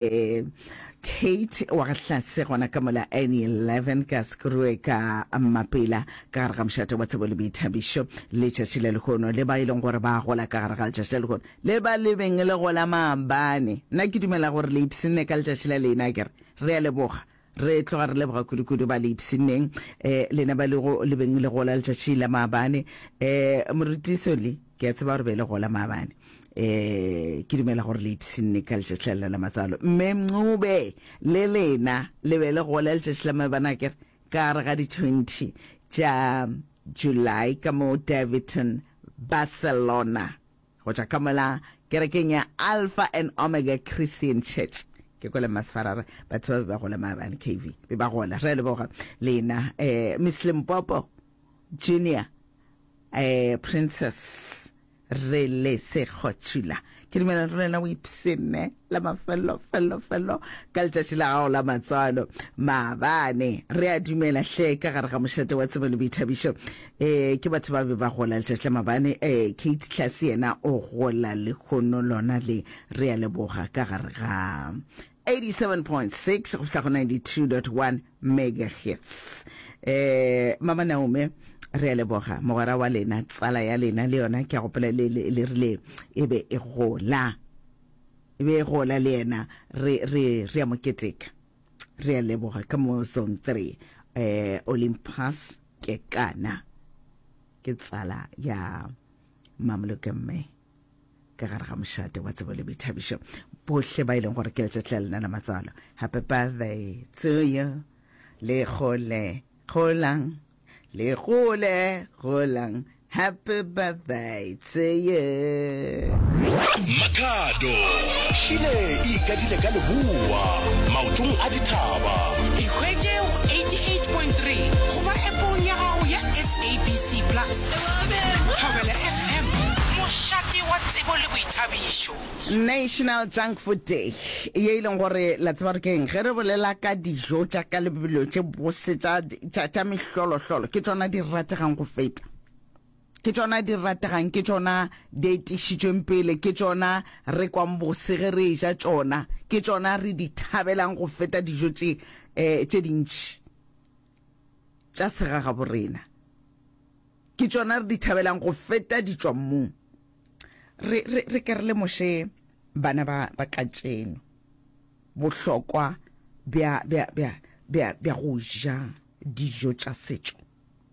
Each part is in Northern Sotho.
Eh, Kate wa ga hlase gona ka mola any 11 ka sekruwe ka mapela ka gare ga mošate wa tsebo le boithabišo le tšatši le lehono le ba e leng gore ba gola ka gare ga letšatši le lehono le ba lebeng le gola maabane nna ke dumela gore le ipsene ka letšatši la lena kere re a leboga Re tloga re leboga kudu-kudu ba le ipshinneng, eh, lena ba lego le beng le gola letšatši la maabane. Eh, moruti Soli, ke a tseba gore be le gola maabane. Eh, ke dumela gore le ipshinne ka letšatši la lena la matsalo. Mme Mncube, le lena le be le gola letšatši la maabane akere, ka gare ga di 20 tša July ka mo Daveyton, Barcelona. Go tšwa ka mola kerekeng ya Alpha and Omega Christian Church, ke kwele masfara re batho ba be ba gola maabane KV be ba gola re a leboga lena eh, Miss Limpopo Junior eh, Princess re le sekgotšula ke dumela re lena o ipsene la mafello fello fello ka letšatši la gago la matswalo maabane re a dumela hle ka gare ga mošate wa tsebo le boithabišo um ke batho ba be ba gola letšatši la maabane um kate tlase yena o gola lekgono lona le re a leboga ka gare ga 87.6 go fihla go 92.1 megahertz um mama naome re a leboga mogwera wa lena tsala ya lena le yona ke a gopela le rile e be e gola Be gola le yena, re, re, re a mo keteka. Re a leboga ka mo Zone 3, eh, Olympus Kekana. Ke tsala ya Mamoloke Mme ka gare ga mošate wa tsebo le boithabišo. Bohle ba e leng gore ke letšatši la lena la matswalo. Happy birthday to you. Le gole, golang. Le gole golang happy birthday to you. Makhado šile e ikadile ka leboa maotong a dithaba. Ikhwetše go 88.3 goba epong ya gago ya SABC Plus. Thobela FM, mošate wa tsebo le boithabišo. National Junk Food Day ye e leng gore la tseba gore ke eng ge re bolela ka dijo tša ka lebelo tše bose tša tša tša mehlolohlolo ke tsona di rategang go feta ke tsona di rategang ke tsona di etišitšweng pele ke tsona re kwang bose ge re ja tsona ke tsona re di thabelang go feta dijo tše um tše dintši tša segagabo rena ke tsona re di thabelang go feta ditswammung re, re, re ke re lemoše bana ba, ba katšeno bohlokwa bja, bja, bja, bja, bja go ja dijo tša setšo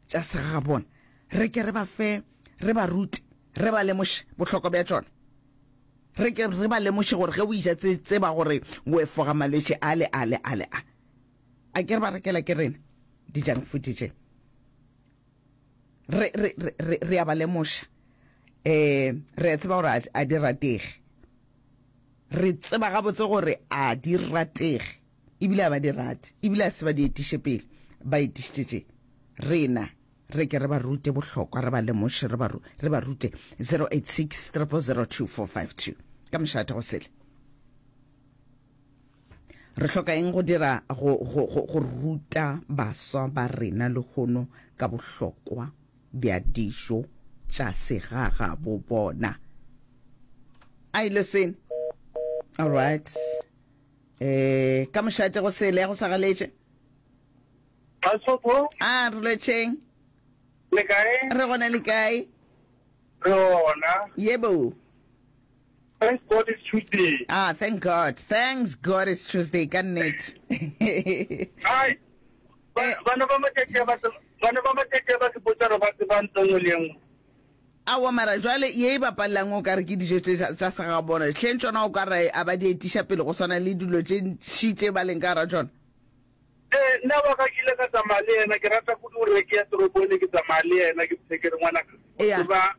tša segagabona re ke re ba fe re ba rute re ba lemoše bohlokwa bja tšona re ke re ba lemoše gore ge o ija tse tseba gore o efoga malwetse a le a le a le a a ke re ba rekela ke rena dijang food je re, re, re, re, re a ba lemoša um re a tseba gore a, a di ratege re tseba gabotse gore a di ratege ebile a ba di rate ebile a se ba di etiše pele ba etišitše rena re ke re ba rute bohlokwa re ba lemoše re ba re ba rute 086 3002452 ka mošate go sele Re hloka eng go dira go, go, go, go ruta baswa ba rena lehono ka bohlokwa bja dijo tša segagabo bona? Are you listening? All right. Eh, ka mošate go sele ya go sagaletše. Basotho, Ah, re lwetšeng. le kae? Re gona le kae? Re ona. Yebo. Thanks God it's Tuesday. Ah, thank God. Thanks God it's Tuesday ka nnete. Ai. Eh. Bana ba matšatši a ba bana ba matšatši a ba se botsa re ba tsebang tsengwe le engwe. awa mara jwale ye e bapalelang o kare ke dijo tse tsa sega bona tlheng tsona o kare a ba di etiša pele go swana le dilo tše ntši tše ba leng ka gara tsona Ee, nna wa ka ke ile ka tsamaya le yena, ke rata kudu gore ke ya toropong ne ke tsamaya le yena, ke phe ke re ngwana ka Ea. tseba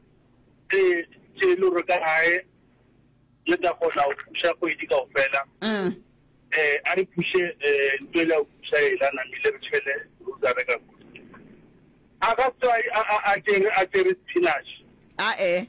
tse tse e le gore ka gae le tla kgona go thuša kgwedi kao fela Mm. eh a re phushe eh ntho e le go phusha e la namile re tshele ruta re ka a ka tswa a a a tere a tere spinach a e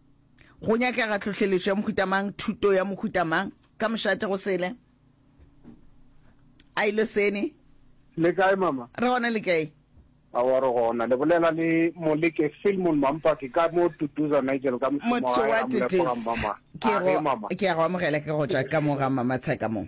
Go nyakega tlhohleletšo ya mohuta mang, thuto ya mohuta mang, ka mošate go sele. A ilo sene. Le kae mama? Re gona le kae? A wa re gona. Le bolela le Moleke Filmon Mampaki ka mo Tutuza Nigel ka mošomo wa hae. Motho wa Tutuza. Ke go ke go amogela ke go tšwa ka mo ga mama tshaka mo.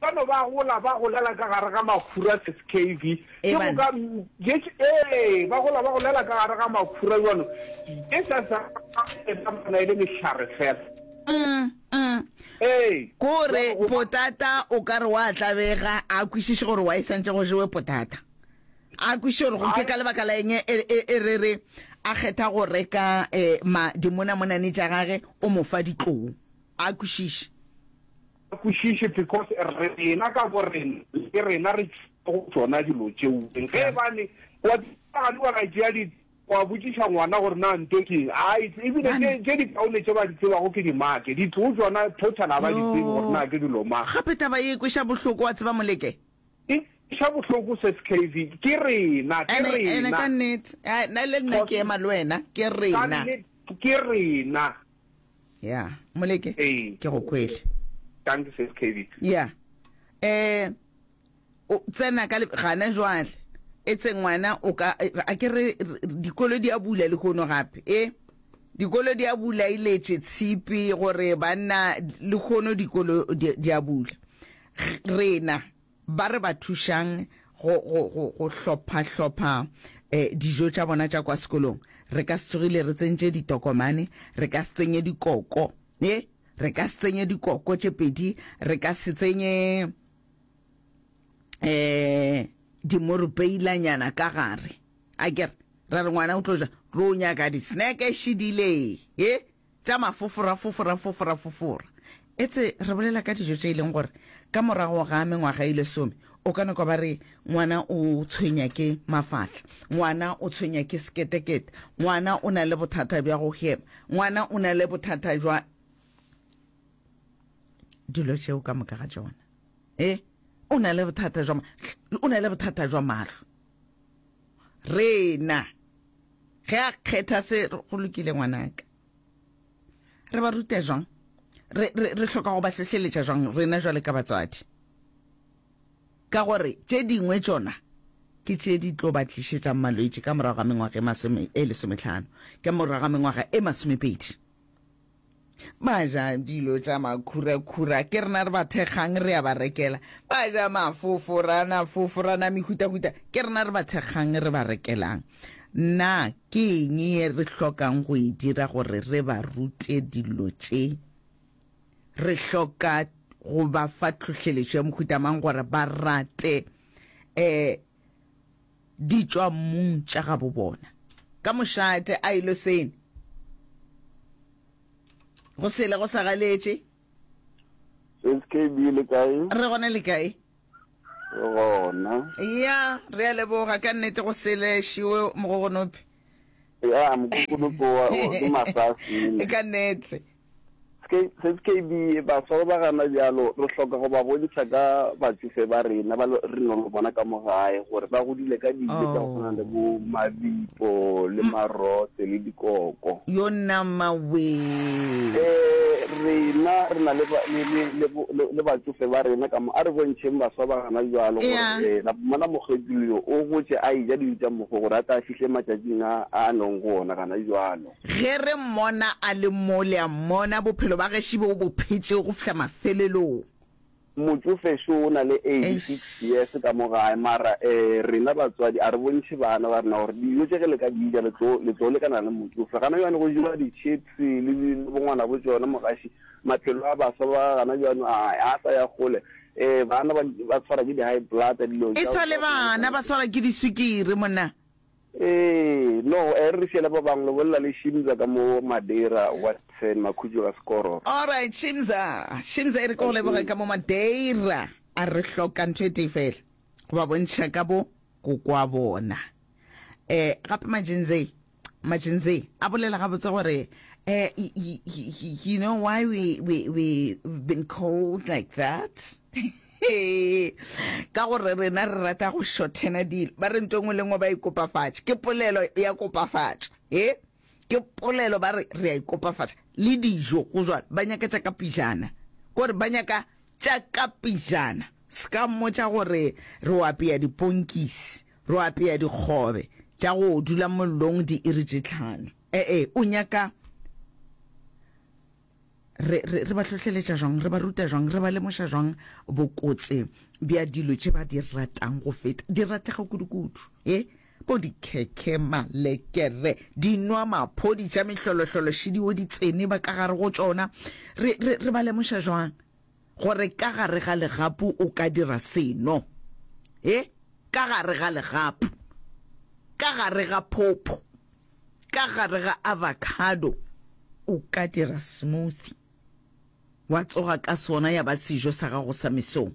Ba no ba gola ba golela ka gare ga makhura sis KV. Ke go ka ee ba gola ba golela ka gare ga makhura jwalo. Ke sa sa bona e le mehlare fela. Kore potata o ka re wa tlabega a kwishiše gore wa e santše go jewe potata. A kwishiše gore go ke ka lebaka la eng e re re a kgetha go reka ma dimona monane tša gage o mo fa ditlou. A kwishiše. Ga kwešiše because rena ka borena le ke rena re tšwile go tšona dilo tšeo. Ge e bane wa gane wa ra tšea di wa botšiša ngwana gore na nto ke eng a e ebile tše tše di kaone tše ba di tsebago ke di make di tlo tšona total a ba di tsebe gore na ke dilo mang. Gape taba ye e kweša bohloko wa tseba Moleke. E kweša bohloko se skv ke rena ke rena. Ene ene ka nnete. Nna le nna ke ema le wena ke rena. Ka nnete ke rena. ya moleke Ee. ke go kwele thanks sis kb ya eh o tsena ka le- gana jwale e tse ngwana o ka eh, a ke re re- dikolo di a bula le kono gape e dikolo di a bula iletše tshipi gore banna le kono dikolo di di a bula G- rena Ba re ba thušang go, go, go, go hlopha-hlopha eh, dijo tša bona tša kwa sekolong. Re ka se tsogile re tsentše ditokomane, re ka se tsenye dikoko, e, re ka se tsenye dikoko tše pedi, re ka se tsenye eh, dimorupeilanyana ka gare. A ke re, ra re ngwana o tlo ja, tlo nyaka diseneke šidile, e, tša mafofora fofora fofora fofora. Etse re bolela ka dijo tše e leng gore ka morago ga mengwaga e lesome o ka nokwa ba re ngwana o tshwenya ke mafahla, ngwana o tshwenya ke seketekete, ngwana o na le bothata bja go hema, ngwana o na le bothata jwa dilo tšeo ka moka ga tšona. E, o na le bothata jwa, o na le bothata jwa mahlo. rena ge a kgetha se go lokile ngwanaka re ba ruta jwang re, re, re hloka go ba hlohleletša jwang rena jwale ka batswadi ka gore tše dingwe tšona ke tše di tlo ba tlišetšang malwetši ka morago ga mengwaga e e lesometlhano ka morago ga mengwaga e masomepedi ba ja dilo tša makhurakhura ke rena re ba thekgang re a ba rekela ba ja mafoforana foforana mehutahuta ke rena re ba thekgang re ba rekelang na ke eng ye re hlokang go e dira gore re ba rute dilo tše re hloka go ba fa tlhohleletšo ya mohutamang gore ba rate um di tšwa mmung tša gabo bona. Ka mošate a ilo sene go sele go sa galetše. SKB le kae? Re gona le kae? Re gona. Ya, re a leboga ka nnete go sele šiwe mogogonopi. Ya, mokokonopi wa ke masasi. Ka nnete. Skb. Baswa ba ba gana bjalo re hloka go ba bontšha ka batšofe ba rena ba re nang le bona ka mo gae gore ba godile ka dijo tša go tshwana le bo mabipo le marose le dikoko. Yo nama wee. Rena re na le batšofe ba rena ka mo, a re bontšheng baswa ba gana bjalo gore la bona mokgethuli yo o gotše a eja dijo tša mokgo gore a tle a fihle matšatšing a a leng go ona gana bjalo. Ge re Mmona a le mo, le a Mmona, bophelo ba geši bo Bo phetšego go fihla mafelelong. Motšofe šo o na le eighty six years ka mo gae, mara eh, rena batswadi a re bontšhe bana ba rena gore dijo tše ge le ka di ja, le tlo, le tlo lekana le motšofe. Gana bjano go jewa di-chips le di, le bongwana bo tšona, mogaši, maphelo a baswa ba gana bjano a, a sa ya kgole. Eh, bana ba, ba tshwara ke di-high blood, dilo tša, E sa le tša go swana le bana, ba tsona. swarwa ke diswikiri, monna. Ee, no, e re re fiela ba bang lobolela le Shimza ka mo Madeira, Watson, Makhutšo ka Sekoro. Alright, Shimza, Shimza e re ke go leboge ka mo Madeira. A re hloka ntho e tee fela, go ba bontšha ka bo go kwa bona. Eh, gape Majinzei, Majinzei a bolela gabotse gore, eh, y, y, y, y, you know why we, we, we been called like that? Ee, ka gore rena re rata go šothena dilo. Ba re nto engwe le engwe ba ikopafatša. Ke polelo ya kopafatša. E, ke polelo ba re re a ikopafatša. Le dijo go jwalo, ba nyaka tša ka pijana. Kore ba nyaka tša ka pijana. Ska mmotša gore re o apeya diponkisi, re o apeya dikgobe tša go dula mollong diiri tše tlhano. E-e, o nyaka re, re, re ba hlohleletša jwang re ba ruta jwang re ba lemoša jwang bokotse bja dilo tše ba di ratang go feta di ratlega kudukudu e bo dikhekhe malekere dinwa maphodi tša mehlolohlolo šidio di tsene ba ka gare go tšona re, re, re ba lemoša jwang Gore ka gare ga legapu o ka dira seno. He, ka gare ga legapu. Ka gare ga phopho. Ka gare ga avocado. O ka dira smoothie, wa tsoga ka sona ya ba sejo sa gago sa mesong.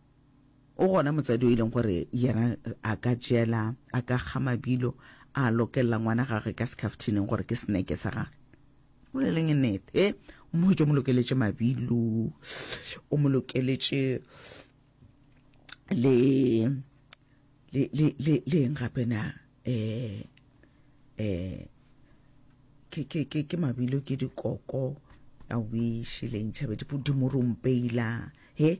O gona motsadi o e leng gore yena a ka jela, a ka kga mabilo, a lokelela ngwana gagwe ka sekhaftineng gore ke seneke sa gagwe. Boleleng nnete, e o mo hwetše o mo lokeletše mabilo, o mo lokeletše le le le le le eng gape na eh eh ke ke ke ke mabilo ke dikoko a wish le ntšhabe dimorumpeila he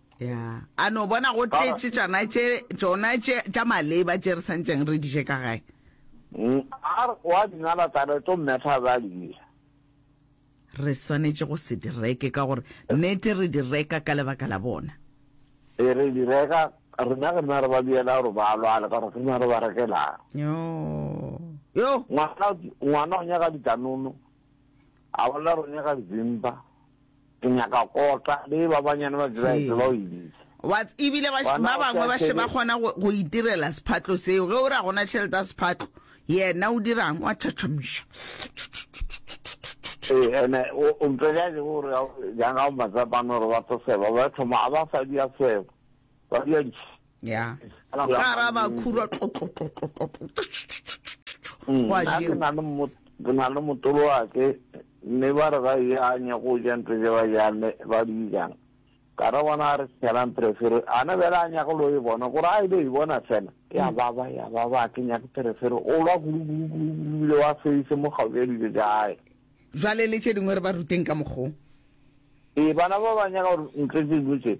ya a no bona go tletše tšona tše tšona tše tša maleba tše re santseng re diše ka gae mm, a re wa dinala tsa re tlo mmetha ba dija re swanetše go se direke ka gore nete re di reka ka lebaka la bona e re di reka rena re na re ba biela gore ba lwale ka gore re na re ba rekelang yo yo ngwana ngwana o nyaka ditanono A bolela gore nyaka nzimpa, ke nyaka kota, be ba banyane ba dira etse ba o ibiša. Wa ts- ebile ba sh- Gona ba o bangwe sa ba še ba shebe- kgona go go itirela sephatlo seo ge o re a gona tšhelete ya sephatlo yena o dirang wa thathamša Ee, ene o o mpega je gore jang ga matsapane gore ba tlo seba ba thoma a ba sa dia seba ba dia ntšhi ya Ala go ya ka ra ba mannete. khura Mm, wa nna ke jeo na le mo- ke na le motolo wake mme ba re ba janye go ja ntho je ba jane ba di jang ka re bona a re sejalang perefere ane bele a nyake lo e bona gore a ile e bona fela ya baba ya baba a ke nyake perefere o lwa kulukulukulubile wa feise mo gaufi ya dijo ja gae jwale le tše dingwe re ba ruteng ka mokgong ee bana ba ba nyaka gore ntle tse dilo tse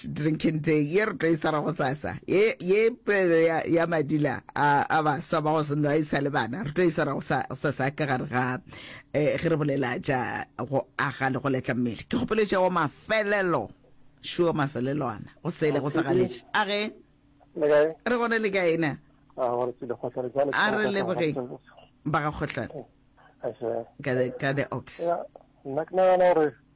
World Drinking Day ye re tlo e swara go sasa ye ye pelo ya, ya madila a, a baswa ba go se nwa e sa le bana re tlo e swara go sa- go sasa ka gare ga eh, ge re bolela tša go aga le go letla mmele ke kgopolo tša wa mafelelo sure mafelelo ana go sele go sa galetše a ge le kae re gone le ka ena a gore tsile kgotla re jale A re lebogeng. ba ga kgohlane Ashe. ka the, ka the ox Ya, nna ke nagana gore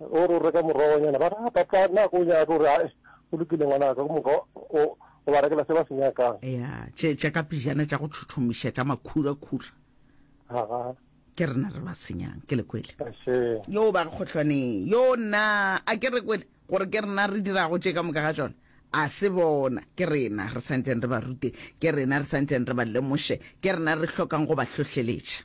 O re o reka morogonyana, ba re, A papa, na ga o nyake? O re, Ae, go lokile ngwana ka, go moka o, o ba rekela se ba se nyakang. Ya, tše, tša ka pejana tša go thothomiša tša makhurakhura. Aga. Ke rena re ba senyang, ke le kwele. Ashe. Yoo ba kgohlwane yoo, nna, a ke re kwele, gore ke rena re dirago tše ka moka ga tšona. A se bona, ke rena re swanetšeng re ba rute, ke rena re swanetšeng re ba lemoše, ke rena re hlokang go ba hlohleletša.